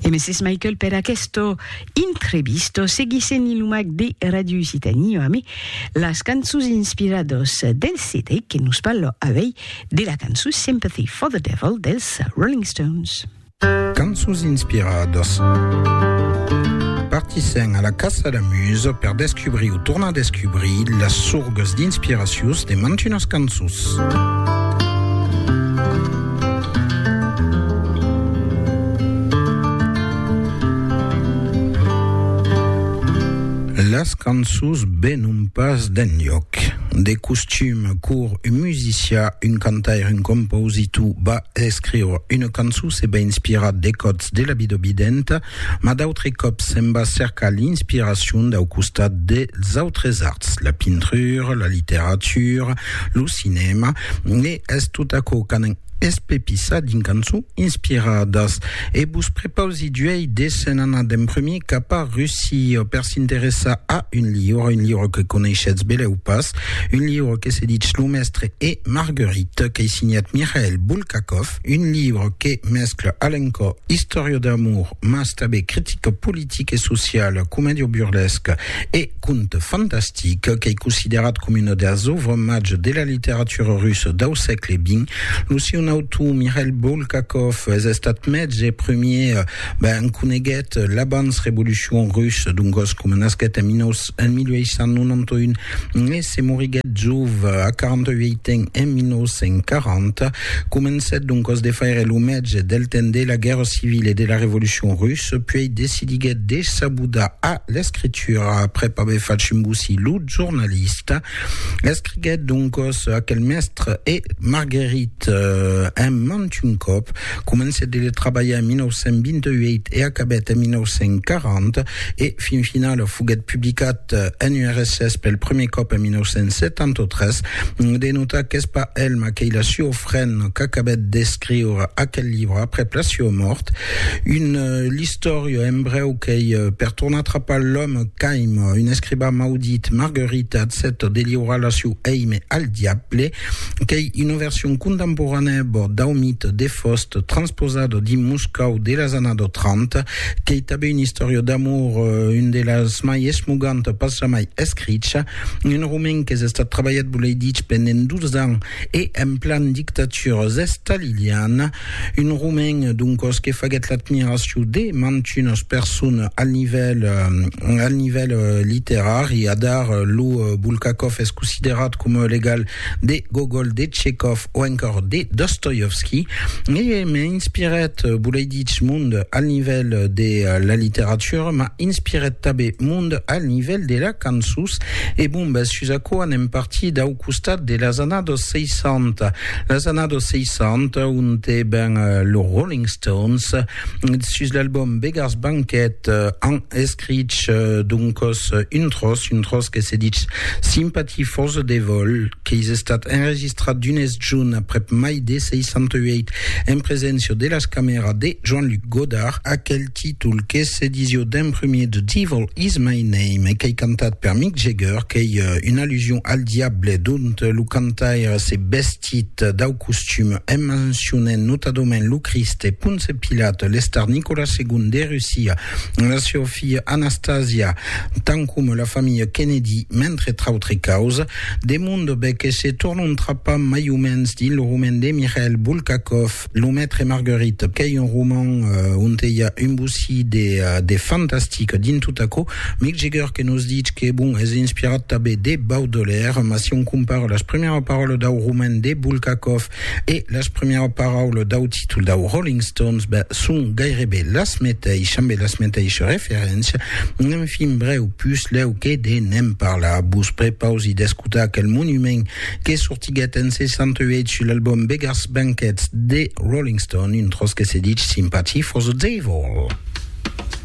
E Mrs. Michael per aquesto intrevisto seguisse ni lo mac de Radio Occitanie ame las cançons inspirados del CD que nos parlo avei de la cançon Sympathy for the Devil dels Rolling Stones. Cançons inspirados. Partissèm a la caça la muse per descubrir o tornar descubrir las sorgues d'inspiracions de mantunas cançons. Las cançons venon pas d'enlhòc. De costum, cor un musicià, un cantaire, un compositor va escriure una cançon se va inspirar de còts de la vida videnta Mas d'autres còps se'n va cercar l'inspiracion dau costat dels autres arts, la pintura, la literatura, lo cinèma, e es tot aquò qu'anan espepissar dins cançons inspiradas. E vos prepausi d'uèi de se'n anar d'en prumèr cap a Russia per s'interessar a un liure, un liure que coneishetz belèu pas, un liure que se ditz Lo Mestre e Marguerite, qu'ei signat Mikhail Bulgakov. Un libre que mescla a l'encò istòria d'amor mas tanben critica politica e sociala, comèdia burlesca e conte fantastic. Qu'ei considerat coma una das òuvres mages de la literatura russa dau sègle xx. Lo siun autor, Mikhail Bulgakov, es estat mètz e premier, ben, en coneguèt l'abans-revolucion russa, doncas coma nasquèt en 1891, Nesse moriguèt jov, a 48 ans, en 1940. Comencèt doncas de faire lo mètge del temps de la Guèrra Civila e de la Revolucion Russa, puèi decidiguèt de s'abudar a l'escritura aprèp aver fach embosir lo jornalista. Escriguèt doncas aquel Mèstre e Marguerite en mantun còp. Comencèt de trabalhar en 1928 e acabèt en 1940, e fin finala foguèt publicat en URSS pel prumèr còp en 1973. De notar qu'es pas el maquelha Siofren qu'acabèt d'escriure aquel libre aprèp la siua mòrt. Un l'istòria en brèu qu'ei per tornar atrapar l'òme qu'aima un escribà maudit, Marguerite, accèpta de liurar la siu èime al diable. Qu'ei una version contemporanèa bòrd dau mite de Faust transposado dins Moscòu de las anado 30. Qu'ei tanben una istòria d'amor, un de las mai esmoganta pas jamai escricha. Un romen qu'es estat trabalhat, volei dich, pendent 12 ans e en plan dictatura estaliliana. Un romain, doncos, que faguèt l'admiracion de mantunas personas al nivèl, al nivèl literari. Adar, lo Bulgakov es considerat coma o l'egal de Gogol, de Tchekov o encòr de Dostoievski. E m'inspirèt, volei dich, mond al nivèl de la literatura, m'a inspirèt tanben mond al nivèl de la cançons. E bon, bèth, sus aquò anem partir dau costat de las annadas 60. Las annadas 60, onte ben los Rolling Stones, sus l'album Beggars Banquet, an escrich doncos un tròç, un tròç que se ditz Sympathy for the Devil, qu'es estat enregistrat d'unes junh aprèp mai de 68, en preséncia de las camèras de Jean-Luc Godard. Aquel títol que se disió d'en prumèr The Devil Is My Name e qu'ei cantat per Mick Jagger, qu'ei una allusion al diable, dont lo cantaire s'es vestit dau costum en mencionent notadament lo Crist e Ponce Pilat, l'estar Nicolas segon de Russia, la siá filha Anastasia, tant coma la familha Kennedy, mentre trautre causes. De mon de be que se tornontrapam mai o mens dins lo roman de Mikhail Bulgakov. Lo Maitre Marguerite, qu'ei un roman onte i a un bocí de, de fantastic dins tot aquò. Mick Jagger que nos ditz que, bon, es inspirat tanben de Baudelaire, mas si on compara las primièras paraules dau roman de Bulgakov e las primièras paraules dau títol dau Rolling Stones, ben, son gaireben las meteishas, ambe las meteishas referéncias. Enfin, brèu, puslèu que de ne'n parlar, vos prepausi d'escotar aquel monument que sortiguèt en 68 sul album Beggars Banquet de Rolling Stone, un tròç que se dich Sympathy for the Devil.